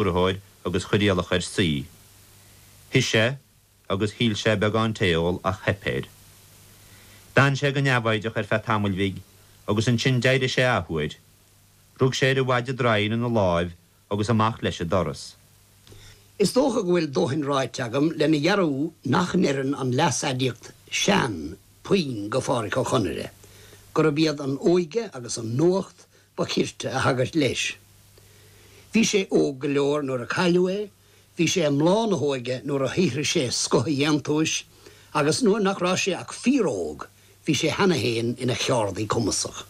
stiúrthóir agus chuir iallach air suí. Shuigh sé, agus shíl sé beagán tae a ól, ach theip air. D'fhan sé go neamhfhoighdeach ar feadh tamaill bhig, agus ansin d'éirigh sé athuair. Rug sé ar a mhaide draighin ina láimh agus amach leis ag doras. Is dócha go bhfuil dóthain ráite agam lena dhearbhú nach n-oireann an leas-aidiacht 'sean' puinn go Phádhraic Ó Conaire, gurab iad an óige agus an nuacht ba chirte a thagairt leis. Bhí sé óg go leor nuair a cailleadh é, bhí sé i mbláth na hóige nuair a shaothraigh sé scoth a dhéantúis, agus nuair nach raibh sé ach fíor-óg, bhí sé cheana féin ina cheardaí cumasach.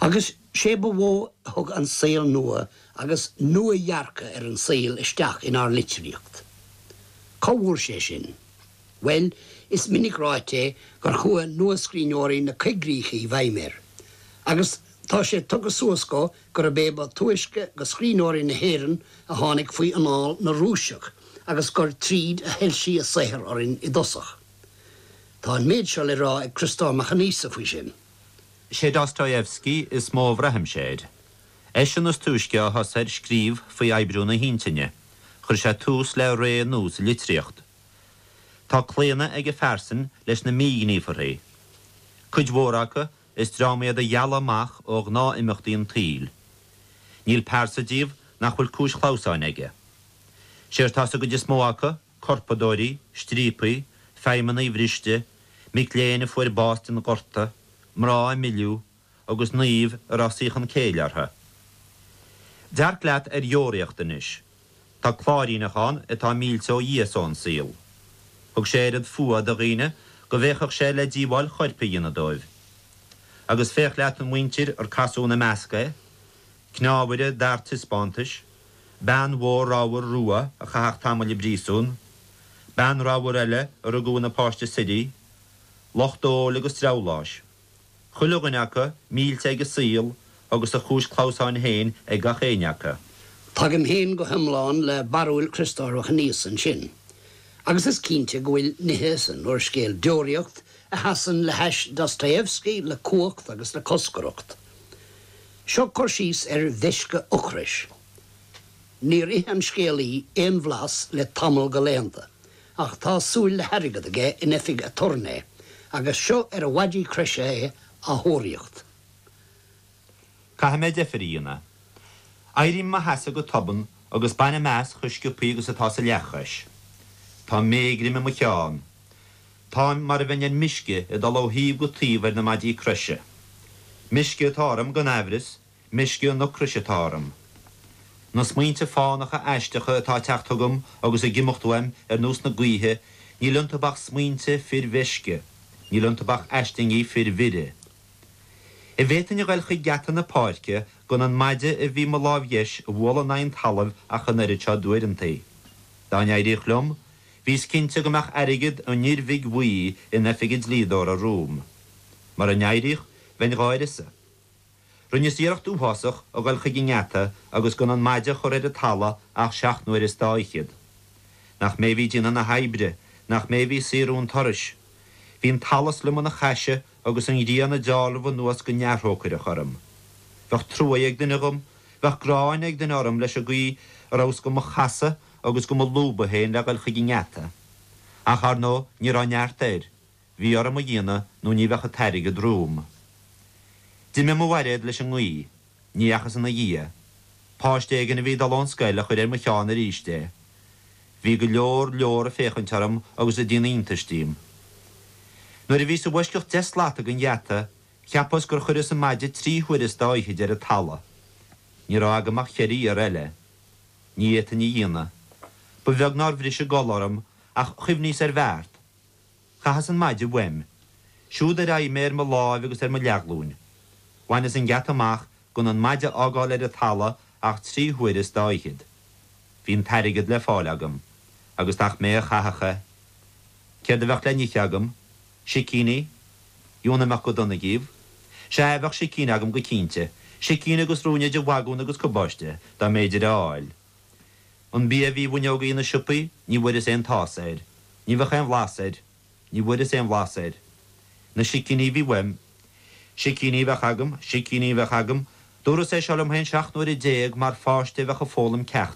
Agus sé ba mhó a thug an saol nua agus nua-dhearcadh ar an saol isteach inár litríocht. Cá bhfuair sé sin? Bhuel, is minic ráite gur chuaigh nuascríbhneoirí na coigríche i bhfeidhm air, agus tá sé tugtha suas dó gurb é ba túisce go scríbhneoirí na hÉireann a tháinig faoi anáil na Rúiseach agus gur tríd a shoilsigh a saothar orainn i dtosach. Tá an méid seo le rá ag Criostóir Mac Aonghusa faoi sin. Sé Dostoyevsky is mó a bhraithimse air. Eisean is túisce a thosaigh ar scríobh faoi oibriú na hintinne. Chuir sé tús le ré nua sa litríocht. Tá claonadh ag a phearsain leis na míghníomharthaí. Cuid mhór acu, is dream iad a dhealaigh amach ó ghnáth-imeachtaí an tsaoil. Níl pearsa díobh nach bhfuil cúis chlamhsáin aige. Sé atá sa gcuid is mó acu, corpadóirí, striapaigh, feidhmeannaigh bhriste, mic léinn a fuair bás den ghorta, mná a milleadh, agus naoimh a raibh saochan céille orthu. Dearc leat ar Dheoraíocht anois. Tá cláiríneach ann atá millte ó Dhia is ón saol. Thug sé oiread fuatha do dhaoine go bhféachfadh sé le díobháil choirp a dhéanamh dóibh. Agus féach leat an mhuintir ar casadh ina measc é, cneámhaire d'fhear taispeántais, bean mhór ramhar rua a chaitheadh tamall i bpríosún, bean ramhar eile a rugadh ina páiste suirí, lucht óil agus dreabhláis. Chuile dhuine acu millte ag a saol agus a chúis clamhsáin féin ag gach éinne acu. Tagaim féin go hiomlán le barúil Chriostóir Mhic Aonghusa ansin. Agus is cinnte go bhfuil nithe san úrscéal Deoraíocht a sheasann le hais Dostoevski le cumhacht agus le coscaireacht. Seo cur síos ar mheisce ocrais. Níor ith an scéalaí aon bhlas le tamall go laethanta ach tá súil le hairgead aige in oifig aturnae agus seo ar a mhaidí croise é á thóraíocht. Caithfidh mé deifir a dhéanamh. Éirím i mo sheasamh go tobann agus bainim as chomh sciopthaí agus atá sa leathchois. Tá méigrim i mo cheann. Táim mar a bheinn ar meisce ag dul ó thaobh go taobh ar na maidí croise. Meisce atá orm, gan aimhreas, Meisce an ocrais atá orm. Na smaointe fánacha aisteacha atá ag teacht chugam agus ag imeacht uaim ar nós na gaoithe, níl iontu ach smaointe fir mheisce, níl iontu ach aislingí fir mhire. An bhféadfainn a ghoil chuig geata na páirce gan an maide a bhí i mo láimh dheis a bhualadh in aghaidh an talaimh ach an oiread seo d'uaireantaí. Dá n-éiríodh liom, bhíos cinnte go mbeadh airgead an fhir bhig bhuí in oifig an dlíodóra romham. Mura n-éiríodh, bheinn dhá uireasa. Rinneas iarracht uathásach a ghoil chuig an ngeata agus gan an maide a chur ar an talamh ach seacht n-uaire is dá fhichead. Nach mé a bhí ag déanamh na hoibre, nach mé a bhí ag saothrú an turais. Bhí an t-allas liom ina chaise agus an ghrian ag dealramh anuas go neamhthrócaireach orm. Bheadh trua ag duine dhom, bheadh gráin ag duine orm leis an gcaoi a rabhas go mo chasadh agus go mo lúbadh féin le ghoil chuig an ngeata. Ach, ar ndóigh, ní raibh neart air. Bhí orm a dhéanamh nó ní bheadh an t-airgead romham. D'imigh mo bhairéad leis an ngaoth. Ní dheachas ina dhiaidh. Páiste éigin a bhí ag dul ón scoil a chuir ar mo cheann aríst é. Bhí go leor, leor ag féachaint orm agus ag déanamh iontais díom. Nuair a bhíos i bhfoisceacht deich slat den gheata, cheapas gur chuireas an maide trí huaire is dá fhichead ar an talamh. Ní raibh agam ach cheithre iarraidh eile. Ní fhéadfainn a dhéanamh. Ba bheag nár bhris an gol orm, ach chuimhníos ar bheart. Chaitheas an maide uaim. Siúd ar aghaidh mé ar mo láimh agus ar mo leathghlúin. Bhaineas an geata amach gan an maide a fhágáil ar an talamh ach trí huaire is dá fhichead. Bhí an t-airgead le fáil agam. Agus nach mé a chaithfeadh é. Céard a bheadh le n-ithe agam? Sicíní? Jú, an mbeadh go dona díobh? Sea, bheadh sicín agam go cinnte. Sicín agus ruainne de bhagún agus cabáiste, dá mb'fhéidir é a fháil. An bia a bhí i bhfuinneogaí na siopaí, ní bhfuaireas aon tás air. Ní bheadh aon bhlas air. Ní bhfuaireas aon bhlas air. Na sicíní a bhí uaim. Sicíní a bheadh agam, sicíní a bheadh agam, dúras é seo liom féin seacht n-uaire déag mar pháiste a bheadh ag foghlaim ceachta.